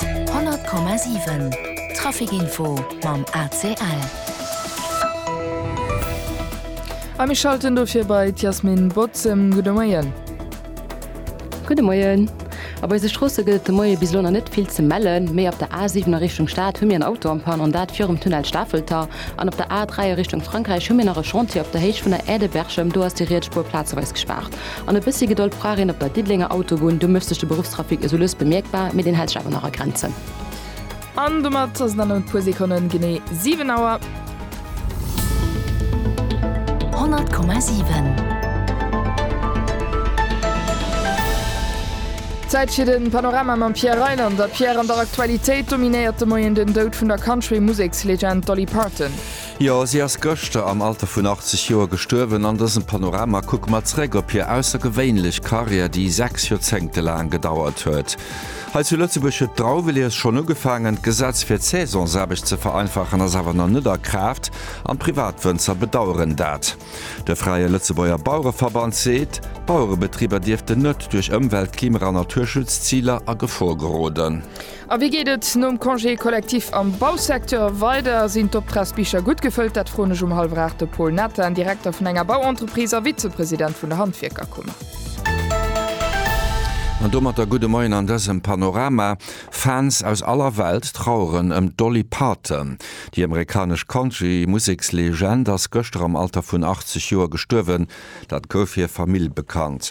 100,7 Trafic Info mam ACL. A mir schalten dofir bei d'Yasmin Bozem. Gudde Moien. Gudde Moien. A bei eise Stroosse gëtt et de Moie bis elo nach net vill ze mellen, mee op der A7 a Richtung Stad hu mir en Auto am Panne an dat virum Tunnel Stafelter. An op der A3 a Richtung Frankräich hu mir nach e Chantier op der Héicht vun der Aire de Berchem, do ass déi riets Spuer plazeweis gespaart. An e bëssi Gedold brauch een op der Diddelenger Autobunn. Do mécht sech de Beruffstrafic esou lues bemierkbar, mee deen hält sech awer nach a Grenzen. An domat ass et an e puer Sekonnen genee 7 Auer. 100,7. Zäit fir de Panorama mam Pierre Reyland. A Pierre, an der Aktualitéit dominéiert de Moien den Doud vun der Country-Musekslegend Dolly Parton. Jo, si ass gëschter am Alter vun 80 Joer gestuerwen. An dësem Panorama kucke mer zréck op hir aussergewéinlech Karriär, déi 6 Joerzéngte laang gedauert huet. Hei zu Lëtzebuerg huet d'Drauwelies schonn ugefaangen. D'Gesetz fir d'Saisonsaarbecht ze vereinfachen ass awer nach net a Kraaft an d'Privatwënzer bedaueren dat. De Fräie Lëtzebuerger Bauereverband seet, d'Bauerebetriber dierften net duerch Ëmwelt-, Klima a Naturschutzziler a Gefor geroden. A wéi geet et nom Congé collectif am Bausecteur weider? Sinn d'Optragsbicher gutt gefëllt? Dat froen ech um hallwer 8 de Paul Nathan, Direkter vun enger Bauentreprise a Vizepresident vun der Handwierkerkummer. An domatter gudde Moien an dësem Panorama. Fans aus aller Welt traueren ëm d'Dolly Parton. Déi amerikanesch Country-Musekslegend ass gëschter am Alter vun 80 Joer gestuerwen. Dat gouf hir Famill bekannt.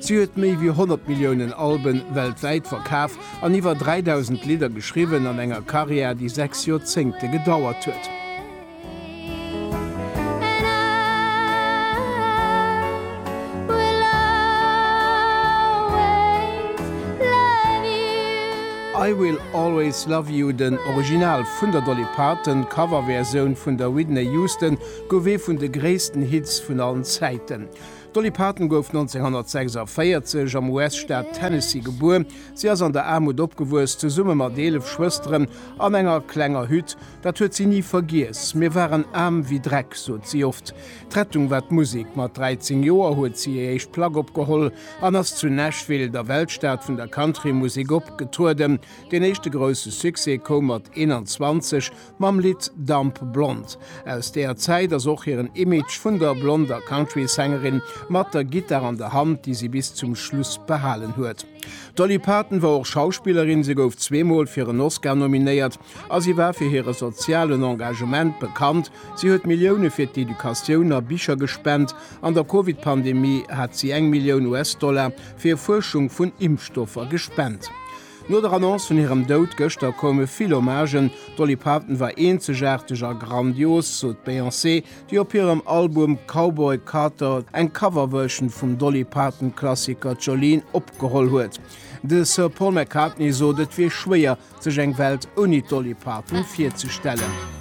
Si huet méi wéi 100 Milliounen Alben weltwäit verkaf an iwwer 3.000 Lidder geschriwwen an enger Karriär, déi sechs Joerzéngte gedauert huet. I Will Always Love You, den Original vun der Dolly Parton, d'Coverversioun vun der Whitney Houston, gouf ee vun de gréissten Hits vun allen Zäiten. D'Dolly Parton gouf 1946 am US-Staat Tennessee gebuer. Si ass an der Aarmut opgewuess, zesumme mat eelef Schwësteren an enger klenger Hütt. Dat huet si ni vergiess. Mir waren aarm wéi Dreck, sot si oft. D'Rettung war d'Musek. Mat 13 Joer huet si hir éischt Plack opgeholl an ass zu Nashville, der Weltstad vun der Country-Musek, opgetrueden. Den éischte grousse Succès koum mat 21, Mam Lidd Dumb Blonde aus deeër Zäit ass och hiren Image vun der blonder Country-Sängerin mat der Gittar an der Hand, déi si bis zum Schluss behalen huet. D'Dolly Parton war och Schauspillerin, se gouf zweemol fir en Oscar nominéiert a si war fir hire sozialen Engagement bekannt. Si huet Millioune fir d'Educatioun a Bicher gespent. An der Covid-Pandemie hat si eng Millioun US-Dollar fir Fuerschung vun Impfstoffer gespent. No der Annonce vun hirem Doud gëschter koume vill Hommagen. D'Dolly Parton war eenzegaarteg a grandios, sot d'Beyoncé, déi op hirem Album Cowboy Carter eng Coverversion vum Dolly-Parton-Klassiker Jolene opgeholl huet. De Sir Paul McCartney sot, et wier schwéier, sech eng Welt ouni d'Dolly Parton virzestellen.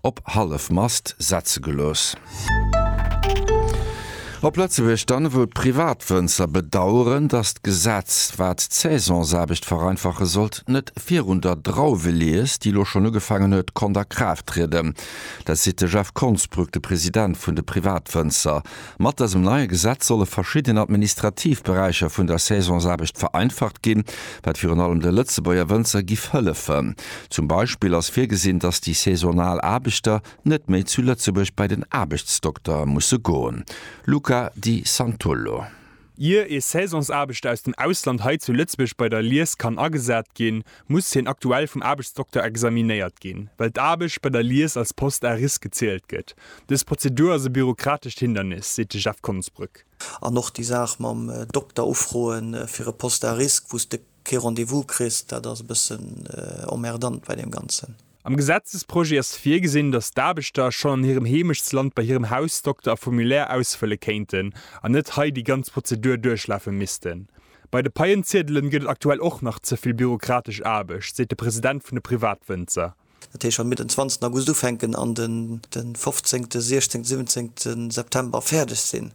op hallef Mast setze gelooss. Op Lëtzebuerg dann, wou d'Privatwënzer bedaueren, datt d'Gesetz, wat d'Saisonsaarbecht vereinfache sollt, net virun der Drauwelies, déi elo schonn ugefaangen huet, konnt a Kraaft trieden, dat seet de Jeff Konsbrück, de President vun de Privatwënzer Mat dësem neie Gesetz solle verschidden administrativ Beräicher vun der Saisonsaarbecht vereinfacht ginn, wat virun allem de Lëtzebuerger Wënzer giff hëllefen. Zum Beispill ass virgesinn, datt déi saisonal Aarbechter net méi zu Lëtzebuerg bei den Aarbechtsdokter musse goen. Luca Di Santullo. Ier ee Saisonsaarbechter aus dem Ausland hei zu Lëtzebuerg bei der Lies kann agesat ginn, muss hien aktuell vum Aarbechtsdokter examinéiert ginn, well d'Aarbecht bei der Lies als Poste à risque gezielt gëtt. Dës Prozedur ass e bürokratescht Hindernis, seet de Jeff Konsbrück. An och déi Saach mam Dokter ufroe fir e Poste à risque, wou s de kee Rendez-vous kriss, dat ass e bëssen emmerdant bei deem Ganzen. Am Gesetzesprojet ass virgesinn, datt d'Aarbechter schonn an hirem Heemechtsland bei hirem Hausdokter e Formulaire ausfëlle kéinten an net hei déi ganz Prozedur duerchlafe missten. Bei de Paien-Ziedelen gëtt et aktuell och nach ze vill bürokratesch Aarbecht, seet de President vun de Privatwënzer. Dat heescht, wa mir den 20 August ufänken an den 15, 16, 17 September fäerdeg sinn,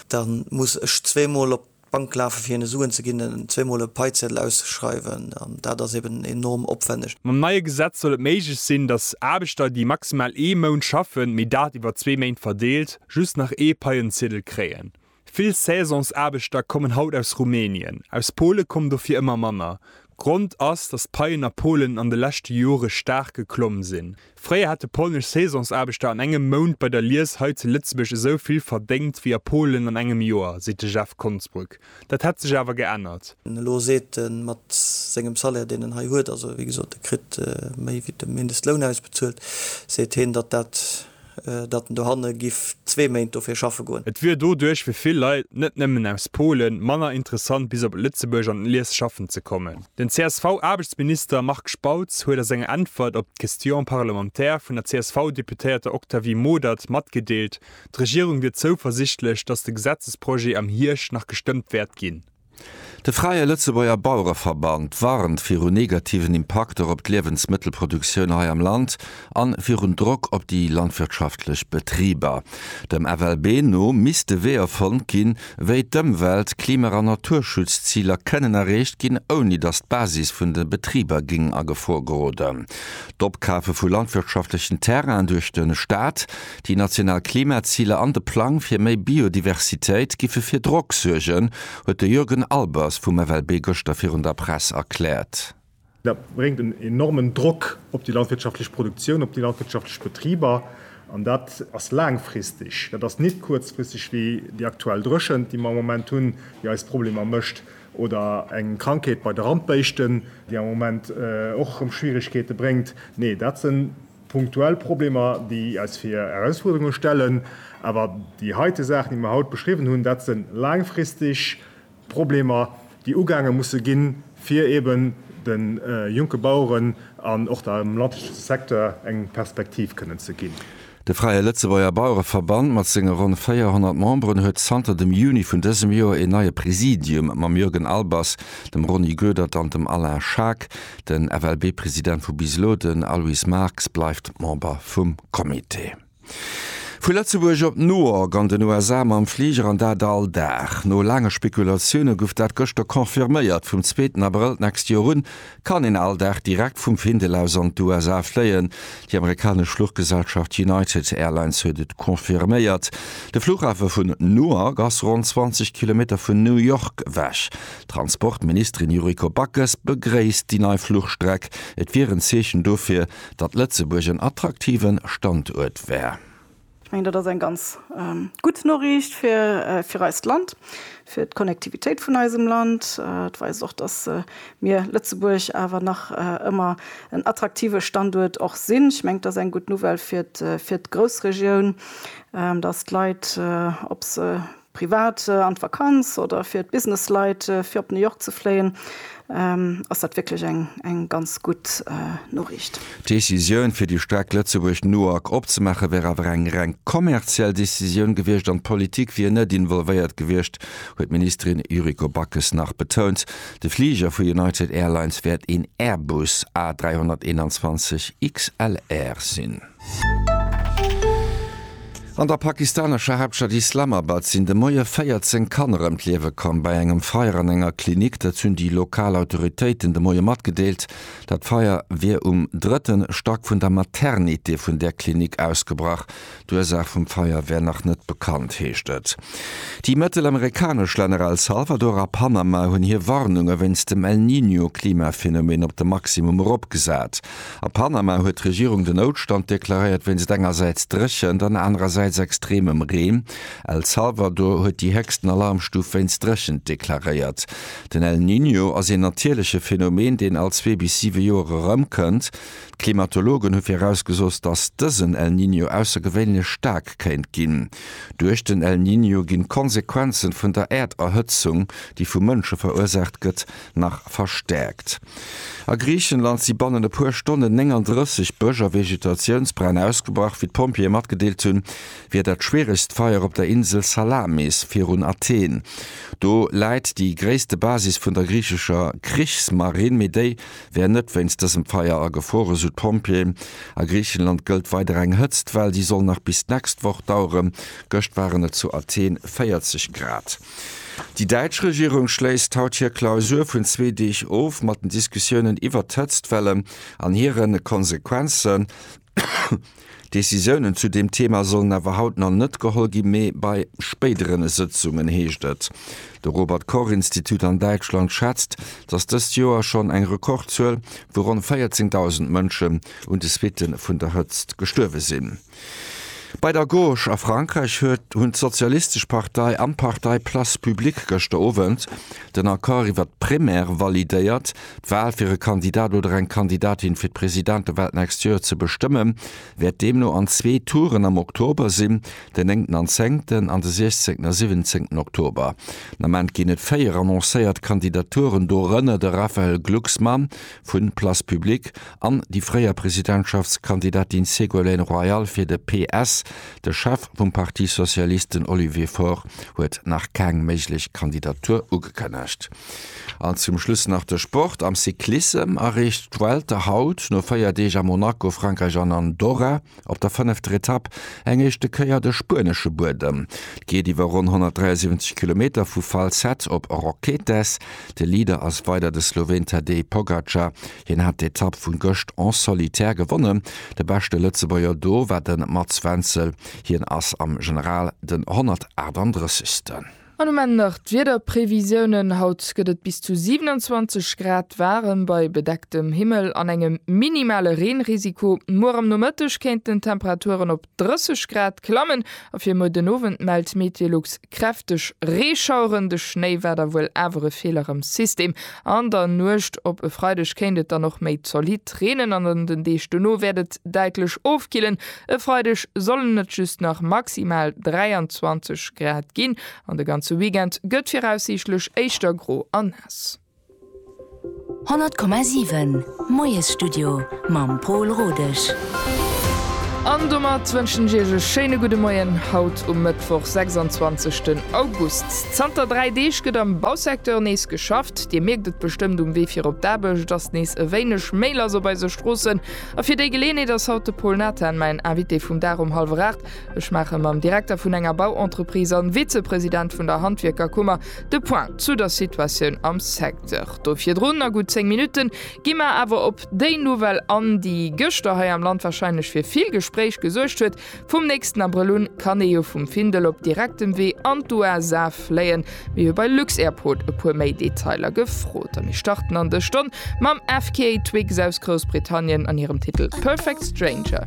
da muss ech zweemol op D'Bank lafe fir hinne Suen ze ginn zweemol e Paizeddel auszeschreiwen an dat ass eben enorm opwänneg. Mam neie Gesetz soll et méiglech sinn, datt Aarbechter, déi maximal ee Mount schaffen, mee dat iwwer zwee Méint verdeelt, just nach ee Paienziedel kréien. Vill Saisonsaarbechter kommen haut aus Rumänien. Aus Pole kommen dofir ëmmer manner. Grond ass, datt d'Paien a Polen an de leschte Jore staark geklomm sinn. Fréier hätte polnesch Saisonsaarbechter an engem Mount bei der Lies hei zu Lëtzebuerg esou vill verdéngt wéi a Polen an engem Joer, seet de Jeff Konsbruck. Dat hätt sech awer geännert. Elo seet en, mat sengem Salaire, deen en hei huet, also wéi gesot, e kritt méi wéi de Mindestloun ausbezuelt, seet hien, datt dat, datt en dohanne giff zwee Méint dofir schaffe goen. Et wier doduerch fir vill Leit, net nëmmen aus Polen, manner interessant bis op Lëtzebuerg an d'Lies schaffen ze kommen. Den CSV-Aarbechtsminister Marc Spautz huet a senger Äntwert op d'Question parlementaire vun der CSV-Deputéierter Octavie Modert matgedeelt, d'Regierung wier zouversichtlech, datt de Gesetzesprojet am Hierscht nach gestëmmt wäert ginn. De Fräie Lëtzebuerger Bauereverband warnt viru negativen Impakter op d'Liewensmëttelproduktioun hei am Land. an virun Drock op déi landwirtschaftlech Betriber. Dem FLB no misste Weeër fonnt ginn, wéi d'Ëmwelt-, Klima a Naturschutzziler kënnen erreecht ginn, ouni datt d'Basis vun de Betriber géing a Gefor geroden. D'Opkafe vu landwirtschaftlechen Terrainen duerch de Staat, déi national Klimaziler an de Plang fir méi Biodiversitéit giffe fir Drock suergen, huet de Jürgen Albers vum FLB gëschter virun der Press erkläert. Dat bréngt en enormen Drock op déi landwirtschaftlech Produktioun, op déi landwirtschaftlech Betriber. An dat ass laangfristeg, dat ass nit kuerzfristeg wéi déi aktuell Dréchent, déi mer am Moment hunn, déi eis Problemer mécht, oder eng Krankheet bei de Randbéischten, déi am Moment och erëm Schwierigkeete bréngt. Nee, dat sinn punktuell Problemer, déi eis vir Erausfuerderunge stellen. Awer déi heite Saachen, déi mer haut beschriwwen hunn, dat sinn laangfristeg. Problemer, déi ugaange musse ginn, fir eben de jonke Baueren an och dem landwirtschaftleche Secteur eng Perspektiv kënnen ze ginn. De Fräie Lëtzebuerger Bauereverband mat senge ronn 400 Memberen huet zanter dem Juni vun dësem Joer een neie Präsidium mam Jürgen Albers, dem Rony Goedert an dem Alain Schaack. Den FLB-President vu bis elo, den Aloyse Marx, bleift Member vum Comité. Vu Lëtzebuerg op New York an den USA mam Fliger an dat all Dag. No laange Spekulatioune guff dat gëschter confirméiert, vum zweeten Abrëll d'nächst Joer un kann een all Dag direkt vum Findel aus an d'USA fléien. Déi amerikanesch Fluchgesellschaft United Airlines huet et confirméiert. De Fluchhafe vun Newark ass ronn 20 Kilometer vun New York ewech. D'Transportministerin Yuriko Backes begréisst déi nei Fluchstreck. Et wier en Zeechen dofir, datt Lëtzebuerg en attraktive Standuert wär. Ech mengen, dat ass eng ganz gutt Noriicht fir eist Land, fir d'Connectivitéit vun eisem Land. Et weist och, datt mir Lëtzebuerg awer nach ëmmer en attraktive Standuert och sinn. Ech mengen, et ass eng gutt Nouvelle fir d'Groussregioun, datt d'Leit, ob se Privat an d'Vakanz oder fir d'Businessleit fir op New York ze fléien, ass dat wierklech eng ganz gutt Noriicht. D'Decisioun fir déi Streck Lëtzebuerg-Newark opzemaache wär awer eng reng kommerziell Decisioun gewiescht an d'Politik wier net involvéiert gewiescht, huet d'Ministerin Yuriko Backes nach betount. De Fliger vu United Airlines wäert een Airbus A321 XLR sinn. An der pakistanescher Haaptstad Islamabad sinn de Moie 14 Kanner ëm d'Liewe komm bei engem Feier an enger Klinik. Dat hunn déi lokal Autoritéiten de Moie matgedeelt. Dat Feier wier um drëtte Stack vun der Maternité vun där Klinik ausgebrach. D'Ursaach vum Feier wär nach net bekannt, heescht et. Déi mëttelamerikanesch Länner El Salvador a Panama hunn hir Warnunge wéinst dem El Niño-Klimaphenomeen op de Maximum eropgesat. A Panama huet d'Regierung den Noutstand deklaréiert wéinst engersäits Dréchent an anerersäits extremem Reen. El Salvador huet déi héchsten Alarmstuf wéinst Dréchent deklaréiert. Den El Niño ass een natierleche Phenomen, deen all zwee bis siwe Joer erëmkënnt. D'Klimatologen hu virausgesot, datt dësen El Niño aussergewéinlech staark kéint ginn. Duerch den El Niño ginn d'Konsequenzen vun der Äerderhëtzung, déi vu Mënsche verursaacht gëtt, nach verstäerkt. A Griichenland si bannen e puer Stonnen 39 Bësch a Vegetatiounsbränn ausgebrach. Wéi d'Pompjeeë matgedeelt hunn, wier dat schwieregst Feier op der Insel Salamis virun Athen. Do läit déi gréisste Basis vun der griichescher Krichsmarinn, mee déi wär net wéinst dësem Feier agefruer, esou d'Pompjeeën. A Griichenland gëllt weider eng Hëtztwell, déi soll nach bis d'nächst Woch daueren. Gëscht waren et zu Athen 40 Grad. Déi däitsch Regierung schléisst haut hir Klausur vun zwee Deeg of mat den Diskussiounen iwwert d'Hëtztwellen an hire Konsequenzen. Decisiounen zu deem Thema sollen awer haut nach net geholl ginn, mee bei spéidere Sëtzungen, heescht et. De Robert Koch Institut an Däitschland schätzt, datt dëst Joer schonn eng Rekordzuel vu ronn 14.000 Mënschen un de Suitte vun der Hëtzt gestuerwe sinn. Bei der Gauche a Frankräich huet hunn d'Sozialistesch Partei an d'Partei Place Publique gëschter Owend den Accord iwwert d'Primaire validéiert. D'Wal fir e Kandidat oder eng Kandidatin fir d'Presidentewal d'nächst Joer ze bestëmmen, wäert deemno an zwee Touren am Oktober sinn, den néngten an zéngten an de siechzéngten a siwwenzéngten Oktober. Den Ament ginn et véier annoncéiert Kandidaturen, dorënner de Raphaël Glucksmann vun Place Publique an déi fréier Presidentschaftskandidatin Ségolène Royal fir de PS. De Chef vum Parti socialiste, den Olivier Faure, huet nach keng méiglech Kandidatur ugekënnegt. An zum Schluss nach de Sport, Am Cyclissem erreecht d'Vuelta haut no 4 Deeg a Monaco, Frankräich an Andorra. Op der fënnefter Etapp eng éischte Kéier de spuenesche Buedem. Et geet iwwer ronn 173 Kilometer vu Falset op Roquetes. De Leader ass weider de Sloween Tadej Pogacar. Hien hat d'Etapp vu gëscht en solitaire gewonnen. De beschte Lëtzebuerger do war de Mats Wenzel. Hien ass am General den 138. An um Enn nach d'Wiederprevisiounen, Haut gëtt et bis zu 27 Grad waarem bei bedecktem Himmel an engem minimale Reenrisiko. Muer am Nomëtteg kéinten d'Temperaturen op 30 Grad klammen a fir muer den Owend mellt Meteolux kräfteg Reeschaueren. De Schnéi war da wuel awer e Feeler am System. An der Nuecht op e Freideg kéint et dann och méi zolidd reenen an an den Deeg dono wäert et däitlech ofkillen. E Freideg sollen et just nach maximal 23 Grad ginn an de ganze Weekend gëtt viraussiichtlech éischter gro a naass. 100,7 Moiesstudio mam Pol Rodesch. An domat wënschen ech Iech e schéine gudde Moien haut um Mëttwoch, 26 den August. Zanter 3 Deeg gëtt am Bausecteur nees geschafft. Dir mierkt et bestëmmt um Wee fir op d'Aarbecht, et ass nees e wéineg méi lass op eise Stroossen. A fir déi Geleeënheet ass haut de Paul Nathan mäin Invité vum Dag um hallwer 8. Ech maache mam Direkter vun enger Bauentreprise an Vizepresident vun der Handwierkerkummer de Point zu der Situatioun am Secteur do. Virdrun, a gutt 10 Minutten, gi mer awer op déi Nouvelle an, déi gëschter hei am Land wahrscheinlech fir vill Gespréich gesuergt huet, Vum nächsten Abrëll un kann ee jo vum Findel op direktem Wee an d'USA fléien. Mir hu bei Lux-Airport e puer méi Detailer gefrot a mir starten an dës Stonn mam FKA Twigs aus Groussbritannien an hirem Titel Perfect Stranger.